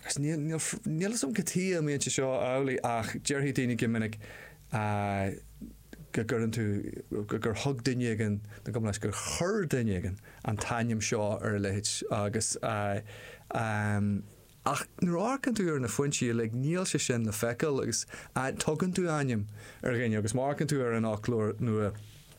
agus níl fhios a'm cad tuighe a mbíonn sé seo amhlaidh ach déarfaidh daoine go minic go gcuireann tú, gur thug duine éigin, nó gcaithfidh sé gur chuir duine éigin an t-ainm seo ar a leithéid agus ach nuair a amharcann tú ar na foinsí uilig níl sé sin le feiceáil agus tugann tú ainm ar dhuine agus má amharcann tú ar an fhoclóir nua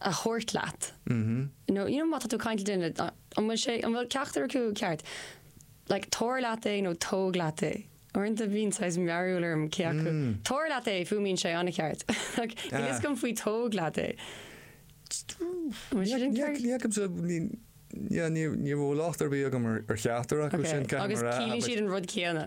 a thabhairt leat, nó you know má tá tú ag caint le duine, an bhfuil sé, an bhfuil ceachtar acu ceart, like tabhair leat é nó tóg leat é, uaireanta bíonn saghas mearúil orm cé acu, tabhair leat é, fuaimníonn sé an-cheart, like níl a fhios agam faoi tóg leat é. Bhfuil sé sin ceart? Ní fhacaimse, ní, yeah, ní raibh láimh ar bith agam ar cheachtar acu sin, ceapaim a rá, ach. Agus ciallaíonn siad an rud céanna.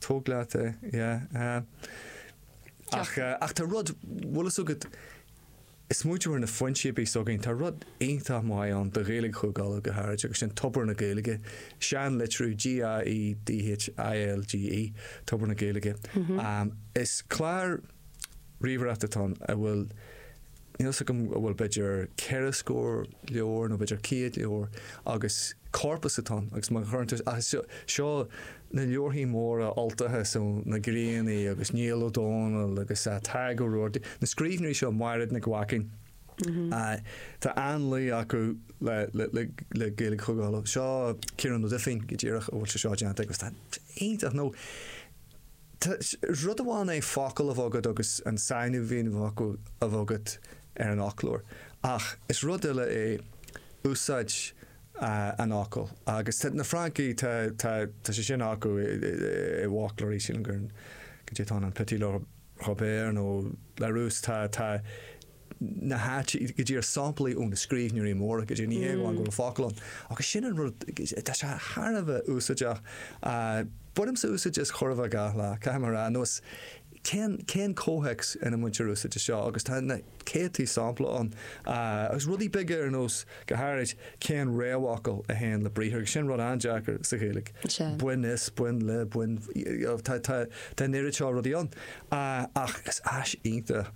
Tóg leat é, yeah. Ach, ach tá rud, bhfuil fhios agat, is móide mar na foinsí, b'fhéidir, s'againn, tá rud iontach maith ann do Ghaeilge Chúige Uladh go háirid agus sin Tobar na Gaeilge, seanlitriú G-a-e-d-h-i-l-g-e, Tobar na Gaeilge, is clár ríomhaireachta atá ann a bhfuil, níl 'fhios agam an bhfuil b'fhéidir ceithre scór leabhar nó b'fhéidir céad leabhar agus corpus atá ann agus má chuireann tú, seo na leabharthaí móra Ultacha, so na Griannaigh agus Niall Ó Dónaill agus Tadhg Ó Rabhartaigh, na scríbhneoirí seo, Maighréad Nic Mhaicín, tá an-luí acu le Gaeilge Chúige Uladh. Seo Ciarán Ó Duibhín go díreach a bhfuil sé seo déanta aige agus tá iontach, nó, Is rud amháin é focal a bheith agat agus an sainmhíniú ar an fhocal a bheith agat ar an fhoclóir ach is rud eile é úsáid an fhocail agus tá na Francaigh, tá, tá, tá sé sin acu i bhfoclóirí, sílim gur, go dté tá an Petit Robert nó Larousse, tá, tá, ina háit, go dtugtar samplaí ó na scríbhneoirí móra so ní hé amháin go bhfuil focal ann. Agus sin an rud, tá sé thar a bheith úsáideach. Bainimse úsáid as chóir a bheith gach lá, caithfidh mé a rá, nó is cén, cén comhthéacs ina mbaintear úsáid as seo agus tá na céadtaí sampla ann. Agus rudaí beaga ar nós, go háirid, cén réamhfhocal a théann le briathar, agus sin rud an-deacair sa Ghaeilge, bain as, bain le, bain, tá, tá, tá an oiread seo rudaí ann. Ach is áis iontach.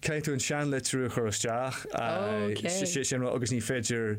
Caithfidh tú an seanlitriú a chur isteach, sin rud agus ní féidir